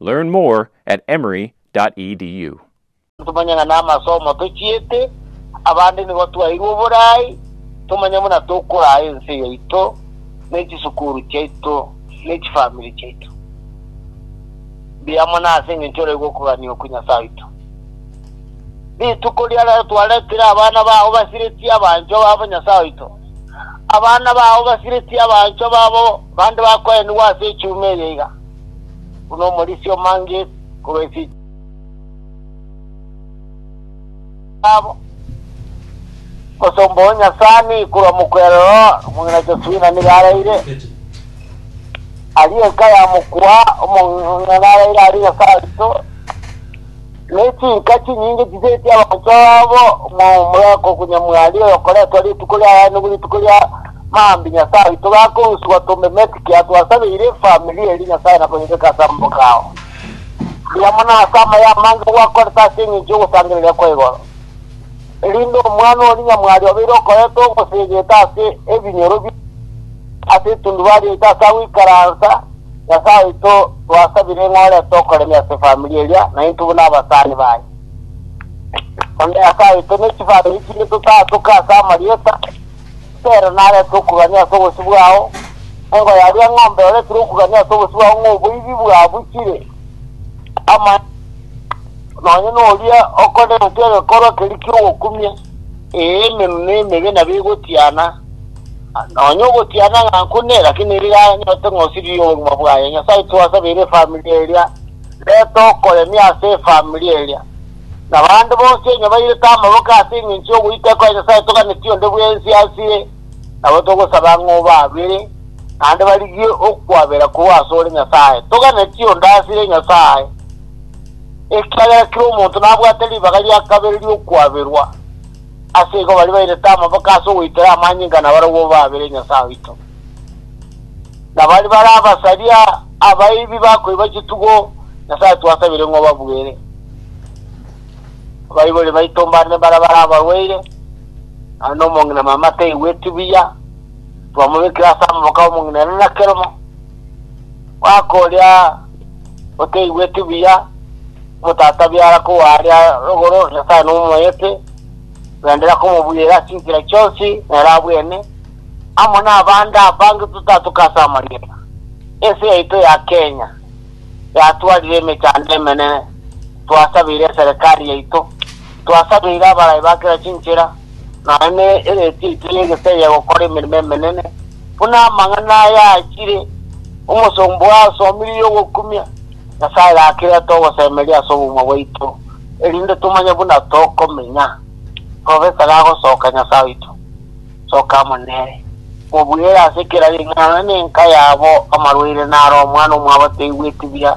Learn more at emory.edu. Ntomanye ng'a namasomo tochiete abande nigo twaeirwe oborai, tomanye buna tokoraa ense yaito, ne chisukuru chiaito, ne chifamiri chiaito mbiamo nase engencho oraigwe okogania okwe Nyasae oito. Rituko ria rero twaretire abana bao basiretie abanchwa babo Nyasae oito. Abana bao basiretie abanchwa babo bande bakoenigwa ase echuma eye iga. buna omorisia omange korwa ense yabo, omosomba o Nyasaani korwa mokwerero omong'ina Josefina nigo araire. Aria enka ya mokua omong'ina araire aria Nyasae oito. Ne chinka chinyinge chisetie abaanchwa babo momorero bw'Onyamwari, oyokoretwa rituko ria Aya nigo rituko ria Maambia Nyasae oito gakorusigwa tombe Mexico, atwasabeire efamiri eria Nyasae na koyebeka ase amaboko ao. Rigia mono ase amaya amange gwakorete ase engencho y'ogosangereria kwa igoro, erinde omwana oria nyamwari obeire okorete ogosegete ase ebinyoro bie ase etundubari yaito ase agoikaransa, Nyasae oito, twasabire ng'a orete okoremia ase efamiri eria, naintwe buna abasani baye. Onde Nyasae oito, ne chifamiri chinde totaatoke ase amarieta, Petero narete okugania ase obosio bwao, engo yaria eng'ombe oretire okugania ase obosio bwao ng'a oboibi bwabuchire, amaene nonye noria okorente egekorwa keria ki'ogokumia, ee, emenwa na emebe nabo egotiana. Nonya ogotiana ng'a nkune, lakini rigia anyorete ng'a osiririe obogima bwaye. Nyasae twasabeire efamiri eria, reta okoremia ase efamiri eria. Na bande bonsi onye bairete amaboko ase engencho y'ogoita ekore Nyasae toganetie onde bwensi ase eye, nabo togosaba ng'a obabere, naende barigie okwabera korwa ase ore Nyasae. Toganetie onde ase eye Nyasae, ekiagera kera omonto nabwate ribaga ria kabere ri'okwaberwa. Ase igo baria bairete amaboko ase ogoitera amanyinga nabarobwo baabere Nyasae oito. Na baria barabasaria abaibi bakoiba chitugo, Nyasae twasabire ng'a obabuere. Abaibori baito mbande baria barabarwaire, aye na omong'ina mama taigweti buya, twamobekire ase amaboko 'omong'ina Enenakeromo, Omwaka oria oteigweti buya, omotata biara kogwa aria igoro, Nyasae nomoete, bendera komobuyera ase enchera chionsi, nere abwene, amo nabande abange totatoka ase amarieta. Ense yaito ya Kenya yatwarire emechando emenene, twasabeire eserekari yaito, twasabeire abaraai ba kera chinchera, nonya ne ereeti yaito y'egesege gokora emeremo emenene, buna amang'ana aya achire, Omosomba oye asomirie ogokumia, Nyasae gaki reta ogosemeria ase obogima bwaito, erinde tomanye buna tokomenya. Profesa gagosoka Nyasae oito, soka amo nere. Mobuere ase kera ring'ana nonya nenka yabo amarwaire naro omwana omwabo taigweti buya.